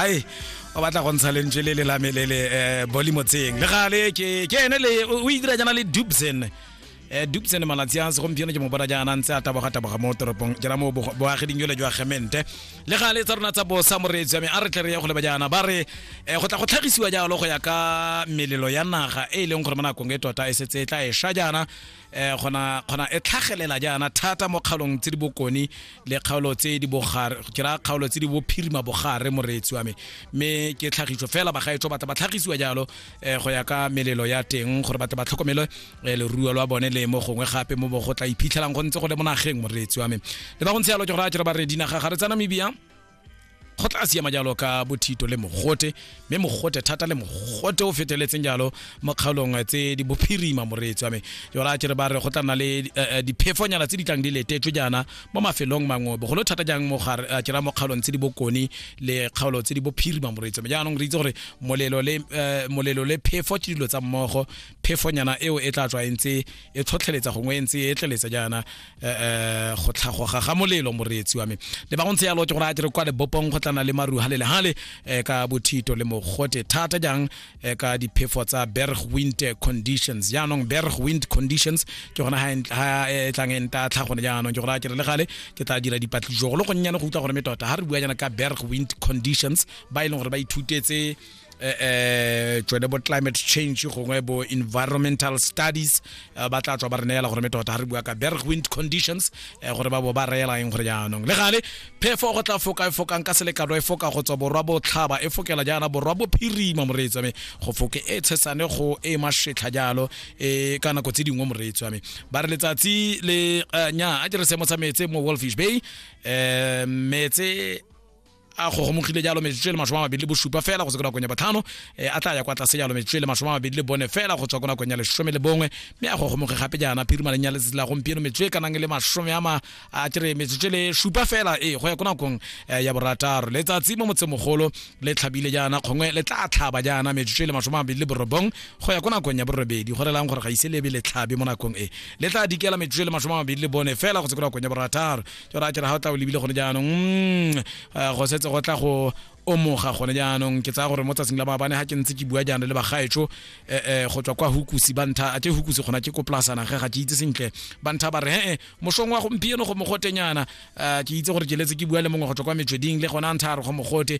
ai o batla go ntsha lentswe le le lame le le eh, boli motseng le gale ke ke ene le o itira jana le dubsen eh dubsen malatsi a segompieno ke mo bona jaana ntse a taboga taboga mo toropong jana mo bogo- boageding jole jwa gemente le gale tsa rona tsa bosa moreetsi wa me a re tle re ye go leba jaana ba re eh, go tla go tlhagisiwa jalo go ya ka melelo ya naga e e leng gore mo nakong e tota e setse e tla e sha jaana eh gona gona e tlhagelela jaana thata mo kgaolong tse di bokone le kgaolo tse di bogare ke ra kgaolo tse di bophirima bogare moreetsi wa me mme ke tlhagiso fela bagaetsho batla ba tlhagisiwa jalo eh go ya ka melelo ya teng gore batla ba tlhokomele eh, leruo lwa bone le mo gongwe gape mo bo go tla iphitlhelang go ntse go le mo nageng moreetsi wa me le ba go ntse jalo ke gore a ke re ba re dinaga ga re tsa namibia go tla siama jalo ka bothito le mogote mme mogote thata le mogote o feteletseng jalo mo kgaolong tse di bophirima moreetsi wa me jona a kere ba re go tla nna le eh, eh, diphefonyana tse di tlang di letetswe jaana mo mafelong mangwe bogolo thata jang mo gare a kera mo kgaolong tse di bokone le kgaolo tse di bophirima moreetsi wa me jaanong re itse gore molelo le eh, molelo le phefo ke dilo tsa mmogo phefonyana eo e tla tswa e ntse e tlhotlheletsa gongwe e ntse e tleletse jaana eh go tlhagoga ga molelo moreetsi wa me le ba go ntse yalo ke gore a dire kwa lebopong go tlana le maru ha le le hale eh, ka bothito le mogote thata jang eh, ka diphefo tsa berg wind conditions jaanong berg wind conditions ke gona ha ha e tlang e nta tlhagone jaanong ke gore a kere le gale ke tla dira dipatlisiso go le gonnyane go utlwa gore me tota ha re bua jana ka berg wind conditions ba e leng gore ba ithutetse eh, eh tsone bo climate change gongwe bo environmental studies eh, ba tla tswa ba re neela gore metota ga re bua ka berg wind conditions eh, gore ba bo ba reela eng gore jaanong le gale phefo go tla foka e fokang ka selekano e foka go tswa borwa botlhaba e fokela jaana borwa bophirima moreetsi wa me go foke e tshesane go e mashetlha jalo e ka nako tse dingwe moreetsi wa me ba re letsatsi le nya a ke re seemo sa metse mo wolfish bay um metse a gogomogile jalo metsotso e le masome a mabedi le bosupa fela go se ko nakong ya batlhano e a tla ya kwa tlase jalo metsotso e le masome a mabedi le bone fela go tswa ko nakong ya lesome le bongwe mme a gogomoge gape jaana phirimaleng ya letsatsi la gompieno metsotso e ka nang le masome ama a kere metsotso e le supa fela e go ya ko nakong eh, ya borataro letsatsi mo motsemogolo le tlhabile jaana kgongwe le tla tlhaba jaana metsotso e le masome a mabedi le borobong go ya ko nakong ya borobedi go relang gore ga ise lebe le tlhabe mo nakong e le tla dikela metsotso e le masome a mabedi le bone fela go se ko nakong ya borataro ke ra kere ga o tla o lebile gone jaanong mm, eh, go setse go tla go omoga gone jaanong ke tsaya gore mo tsatsing la maabane ga ke ntse ke bua jaanong le bagaetso um eh, eh, go tswa kwa hukusi ba ntha a ke hukusi gona ke ko polasana ge ga ke itse sentle ba ntha ba re he mosong wa gompieno go mogotenyana um ke itse gore ke letse ke bua le mongwe go tswa kwa metsweding le gona ntha a re go mogote